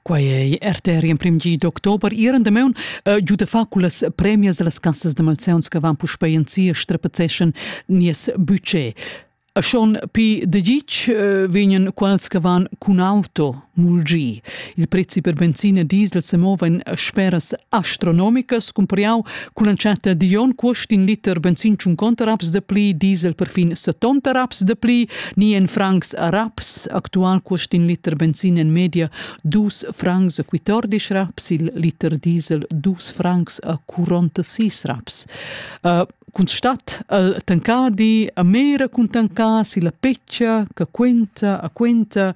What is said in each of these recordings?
Quai è arteri emprim gi d'october. Iran damaun uh, giuda fa cullas premias las cassas de malzeuns che van puspei en sia strepetzeschen nies budget. A schon pi de gic uh, vegnan quals che van cun auto mulgi. Il prezzi per benzina e diesel se movan a sferas astronomicas, cumpariau Cun entschatta di on quest in liter benzin 50 raps de pli, diesel perfin 70 raps de pli, ni en francs raps. Actual quest in liter benzin en media dus francs a 14 raps, il liter diesel dus francs a 46 raps. Uh, cun stat al tancadi a mera cun tancà si la peccia che quenta a quenta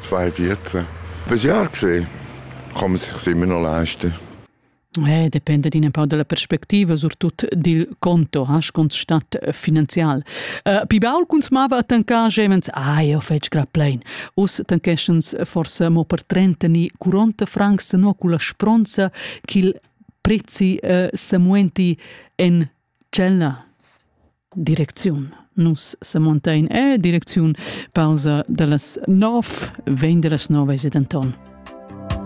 zwei Viertel. Was ja gesehen, kann man sich immer noch leisten. Eh, depende un pau della perspectiva, surtut dil conto, has constat eh, finanzial. Uh, pi baul cuns mava tancar gemens, ah, io fetg gra plein. Us tanqueschens forse mo per 30 ni 40 francs no cu la spronza ch'il prezzi uh, semuenti en Tschel na. Direcziun. Nus semontain e direcziun. Pausa da las nov. Vegn da las nov ese denton.